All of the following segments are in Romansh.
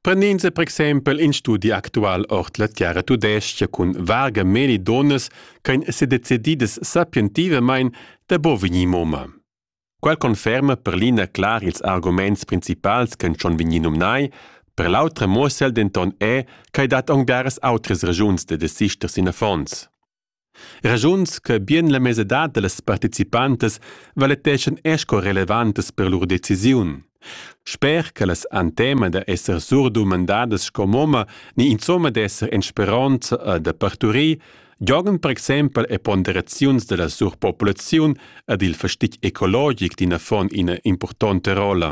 Prend'ins per exempel in studi actual ord la terra tudestga cun varga meli donas ch'ein sedecididas sapientivamain da bo vegnir moma. Quel conferma per l'ina clar ils arguments principals ch'en schon vegnir numnai, per l'autra muossel denton è ch'ei dat aunc daras outras ragiuns da desister sin affons. Raschuns che bien la mesadad da las participantas valeteschan er sco relevantas per lur decisiun. Sper ch'ellas han tema da esser surdumandadas sco momma ni insomma d'esser en speronza e da parturir, giogan per exempel e ponderaziuns da la surpopulaziun ed il fastig ecologic d'in affon ina impurtonta rolla.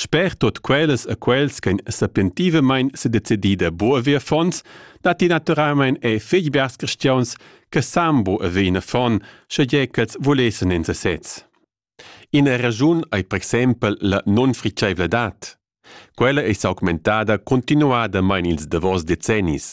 Sper tut quellas e quels ch'ein sapientivamein sedecidi da buca ver affons, datti naturalmein ei fetg biars cristians che san bu haver in affon, schegie ch'els vulessen en sesez. Ina regiun ei per exempel la nunfritscheivladad. Quella ei s'augmentada continuadamein ils davos decennis.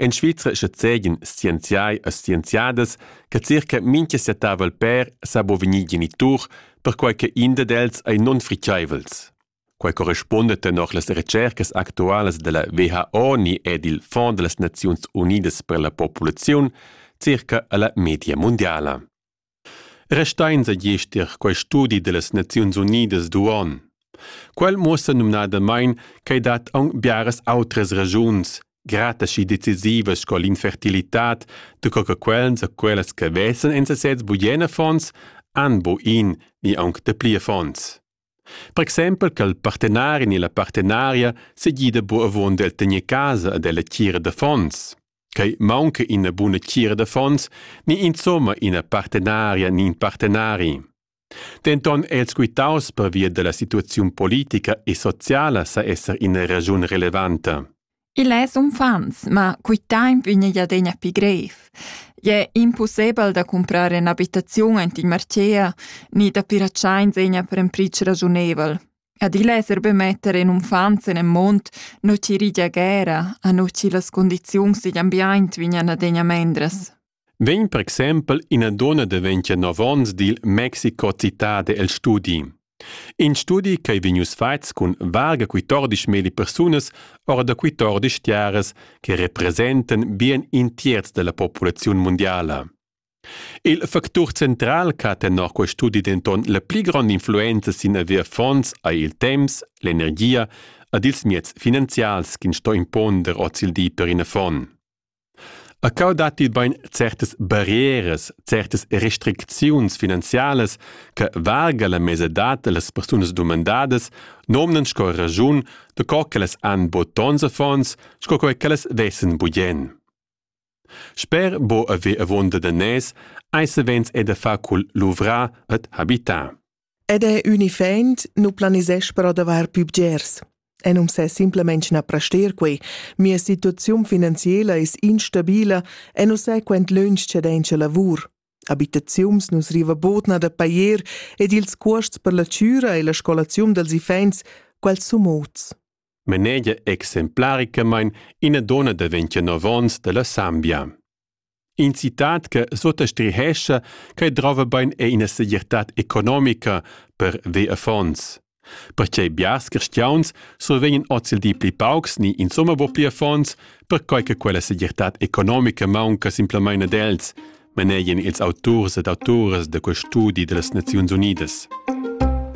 En Svizra schazegian scienziai e scienziadas che circa mintga settavel pèr sa bo vegnir genitur, perquai che in dad els ei nunfriceivels. Quai correspunda tenor las recercas actualas della WHO ni ed il Fonds delle Nazioni Unidas per la popolazione circa alla media mondiala. Restains agiester quai studi dellas Naziuns Unidas d'uonn. Quel muossa numnadamain ch'ei dat aunc biaras outras ragiuns grata schi decisivas sco l'infertilitad da co che quels e quellas che vesan en sesez bugen affons han bu in ni aunc dapli affons. Per exempel che il partenarin e la partenaria segida bu avon del tener casa ad ella tgira d'affons. Quei maunca ina buna tgira d'affons, ni insomma ina partenaria ni in partenari. Denton è els quitaus pervia della situaziun politica e sociala sa esser ina ragiun relevanta. Il es uffants, ma quitaim üna jadegna pi grev. Ie impossibel da comprar ün'abitaziun ant in Marchea, ni da piracciar in segna per un pric ragiunevel. Adilla esser be metter in unfant sen en mund nu chi rigia guera a nu chi las condiziuns digl ambiaint vegnan adegna mendras. Vegn per exempel ina donna daventia nov onns dil Mexico Cittade el studi. In studi ch'ei vegnius fatgs cun varga 14 meli persunas ora da 14 tiaras che representan bien in tierz della populaziun mundiala. Il factur central che ha tenor quest studi denton la pli gronda influenza sin haver fonds ei il temps, l'energia ed ils mieds finanzials ch'ins sto imponder oz il di per in affon. A cau datti bein certas barrieras, certas restricziuns finanzialas che valga la mesadad dallas persunas dumandadas nomnan sco raschun da co che las han bod tons affons sco quei che las vessen bugen. Sper bo haver avonda da nez ei savens è da far cul luvrar ed habitar. Ed è unifaint nu planisesch per adavar pü bgers. E non s'è simplemente na prester quei. Mia situazione finanziela es instabile e non sai quant lunsch c'è denche lavur. Habitaziuns nus riva bodna da pajer ed ils cuosts per la chüra e la scolaziun dels iffaints, quels sun mots. manegia exemplaricamain ina donna da 29 onns da la Sambia. In citat che sottastrihescha che drova bain è ina segirtad economica per ve affons. Perché biars cristians survegnan oz il di pli paucs ni insomma bo pli affons, perquai che quella segirtad economica maunca simplamain ad els, manegian ils auturs ed autoras da quel studi da las Naziuns Unidas.